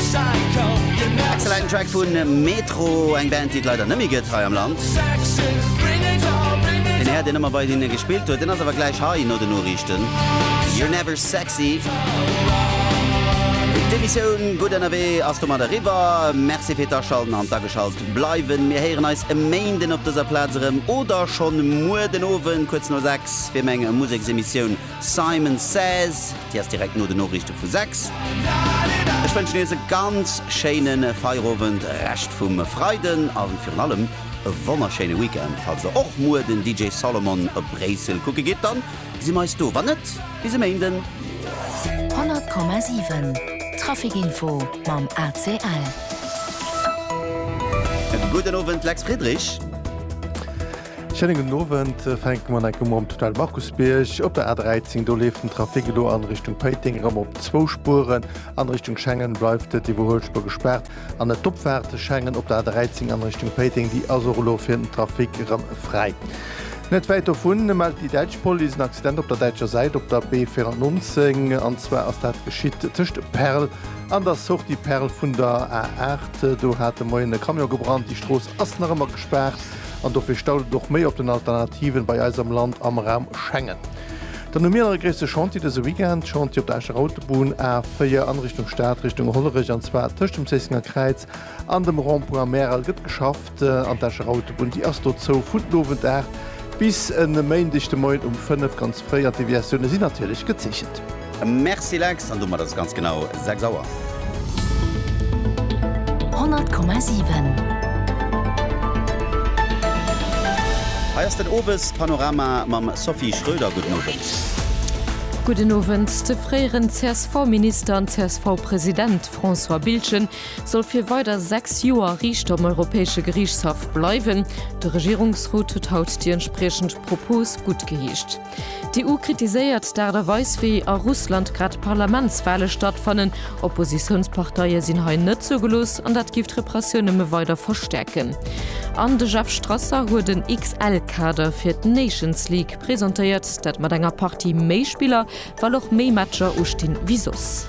Excellenten Track vun Metro, eng Band déi et leider net méi gëtt hei am Land. Deen Här deen ëmmer bei hinne gespillt huet, deen ass awer gläich hei no den Noriichten. You're never sexy. D'Emissioun Gutt ënnerwee ass domat eriwwer. Merci fir d'Aschalten an d'Ageschalt bleiwen. Mir héieren eis e Méinden op dëser Plaz erëm oder schonn muer den Owend kuerz no 6 fir meng Museksemissioun Simon Says, déi ass direkt no de Noriichte vu 6. Ech wënschen iech e ganz schéine Feierowend, Rescht vum Freiden a virun allem e wonnerschéine Weekend. Falls der och muer den DJ Solomon op Bréissel kucke gitt, dann si mer eis do. Wann net, bis e Méinden. 100,7 Traficinfo mam ACL. Gudden Owend, Lex Friedrich. Schéinen gudden Owend. Fänke mer enke Mol um Tunnel Markusbierg. Op der A13, do leeft den Trafic elo an Richtung Péiteng erëm op zwou Spueren. An Richtung Schengen bleift et iwwer Huelspur gespaart. An net d'Opfaart Schengen op der A13 an Richtung Péiteng, déi ass och elo fir den Trafic erëm fräi. Net wäit dovun mellt déi däitsch Police en Accident op der däitscher Säit op der B94. An zwar ass dat geschitt tëscht Perl an der Sortie Perl vun der A8. Do hat de Moien e Camion gebrannt. Déi Strooss ass nach ëmmer gespaart. an dofir staut et och méi op den Alternativen bei eis am Land am Raum Schengen. Dann hu mir nach e gréisste Chantier dëse Weekend, Chantier op der Escher Autobunn A 4 an Richtung Stad, Richtung Hollerech, an zwar tëscht dem Zéissenger Kräiz an dem Rond-point am Märel gëtt geschafft an d'Escher Autobunn déi ass do zou vun den Owend 8 bis en Méindeg de Moien um 5 ganz fréi an d'Deviatioune sinn natierlech gezeechent. Merci Lex, an domat ass et ganz genau 6 Auer. 100,7. Hei ass den Owespanorama mam Sophie Schröder. Gudden Owend. Gudden Owend. De fréieren CSV-Minister an CSV-President François Biltgen soll fir weider 6 Joer Riichter um Europäesche Geriichtshaff bleiwen. De Regierungsrot huet haut déi entspriechend Propos guttgeheescht. D'EU kritiséiert d'Aart a Weis wéi a Russland grad d'Parlamentswale stattfannen. Oppositiounsparteie sinn hei net zougelooss an dat giff d'Repressioun nëmme weider verstäerken. An de Jeff Strasser huet en XL-Kader fir d'Nations League presentéiert. Dat mat enger Partie méi Spiller, well och méi Matcher ustinn wéi soss.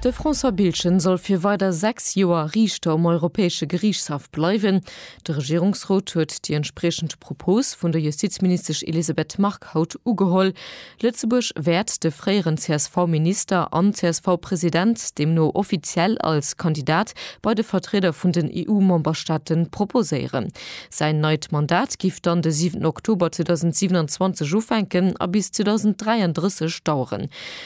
De François Biltgen soll fir weider 6 Joer Riichter um Europäesche Geriichtshaff bleiwen. De Regierungsrot huet déi entspriechend Propos vun der Justizministesch Elisabeth Margue haut ugeholl. Lëtzebuerg wäert de fréieren CSV-Minister an CSV-President deemno offiziell als Kandidat bei de Vertrieder vun den EU-Memberstaate proposéieren. Säin neit Mandat géif dann de 7 Oktober 2027 ufänken a bis 2033 daueren.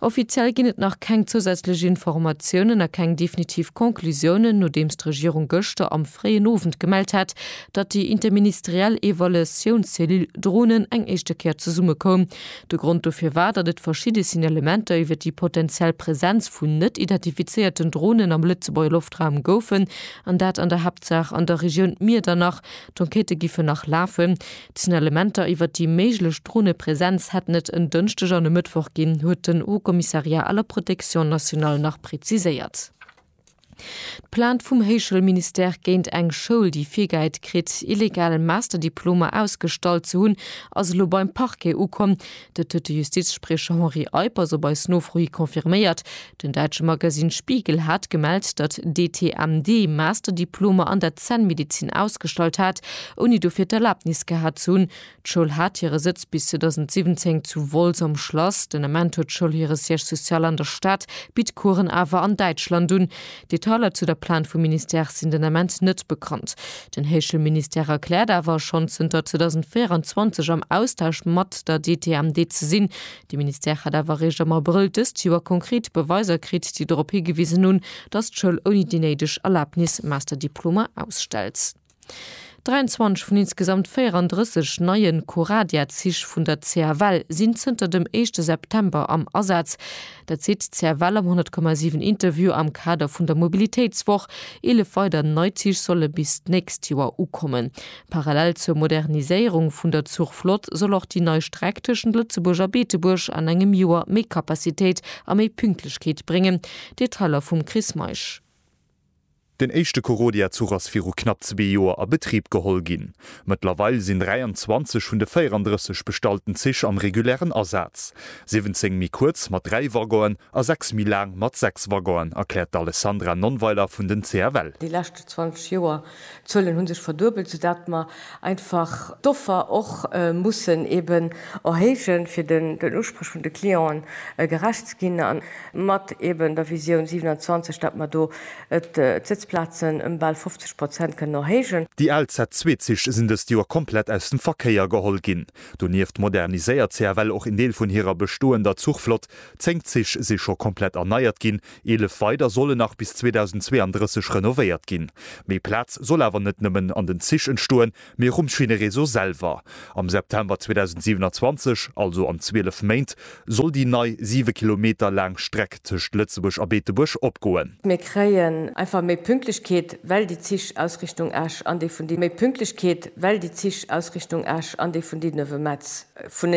Offiziell ginn et nach keng zousätzlech Informatiounen a keng definitiv Conclusiounen, nodeems d'Regierung gëschter am fréien Owend gemellt hat, datt déi interministeriell Evaluatiounscellule Dronen eng éischte Kéier zesummekoum. De Grond dofir war, datt et verschidde Signalementer iwwer déi potenziell Presenz vun net identifizéierten Dronen am Lëtzebuerger Loftraum goufen, an dat an der Haaptsaach an der Regioun Miedernach. D'Enquêtë giffen nach lafen. D'Signalementer iwwer déi méiglech Dronepresenz hätten et en Dënschdeg an e Mëttwoch ginn, huet den Haut Commissariat à la protection nationale nach preziséiert. D'Plainte vum Héichschoulministère géint eng Schoul, déi virgehäit kritt, illegal Masterdiplomer ausgestallt ze hunn, ass elo beim Parquet ukomm. Dat huet de Justizspriecher Henri Eippers op eis Nofro hi confirméiert. Den däitsche Magasinn Spiegel hat gemellt, datt d'ETMD Masterdiplomer an der Zännmedezin ausgestallt hat, ouni dofir d'Erlaabnis gehat ze hunn. D'Schoul hat hire Sëtz bis 2017 zu Wolz am Schlass. Den Ament huet d'Schoul hire Siège social an der Stad, bitt Coursen awer an Däitschland un. Detailer zu der Plainte vum Ministère sinn den Ament net bekannt. Den Heeschel Ministère erkläert awer, schonn zënter 2024 am Austausch mat der DTMD ze sinn. De Ministère hätt awer eréischt am Abrëll dëst Joer konkret Beweiser kritt, déi dorop higewisen hunn, datt d'Schoul ouni déi néideg Erlabnis Masterdiplomer ausstellt. 23 vun insgesamt 34 neie Coradia-Zich vun der CFL sinn zënter dem éischte September am Asaz. Dat seet d'CFL am 100,7 Interview am Kader vun der Mobilitéitswoch. Eelef weider nei Zich solle bis d'nächst Joer ukommen. Parallel zur Moderniséierung vun der Zuchflott soll och déi nei Streck tëschent Lëtzebuerg a Beetebuerg an engem Joer méi Kapazitéit a méi Pünktlechkeet bréngen. Detailer vum Chris Meisch. Den éischte Korodia-Zuch ass viru knapp zwee Joer a Betrib geholl ginn. Mëttlerweil sinn 23 vun de 34 bestallten Zich am regulären Asaz. 17 méi kuerz mat dräi Waggonen a sechs méi laang mat sechs Waggonen, erkläert d'Alessandra Nonnweiler vun den CFL. Déi leschte 20 Joer D'Zuelen hu sech verduebelt, soudatt mer einfach d'Offer och mussen eben erhéijen, fir den Usprech vun de Clienten gerecht ze ginn, a mat eben der Visioun 27, datt mer do d'Sëtzplazen ëm bal 50 Prozent kënnen erhéijen. Déi al Z-Zweezich sinn dëst Joer komplett aus dem Verkéier geholl ginn. Donieft moderniséiert CFL och een Deel vun hirer bestoender Zuchflott. Zéng Zich si scho komplett erneiert ginn, Eelef weider solle nach bis 2032 renovéiert ginn. Méi Plaz soll awer net nëmmen an den Zich entstoen, mee och um Schinnereseau selwer. Am September 2027, also an 12 Méint, soll déi nei 7 Kilometer laang Streck tëscht Lëtzebuerg a Beetebuerg opgoen. Mir kréien einfach méi Pünktlechkeet, well déi Zich aus Richtung Esch an déi vun Méi Pünktlechkeet, well déi Zich aus Richtung Esch an déi vun Dinnewemets vunenee.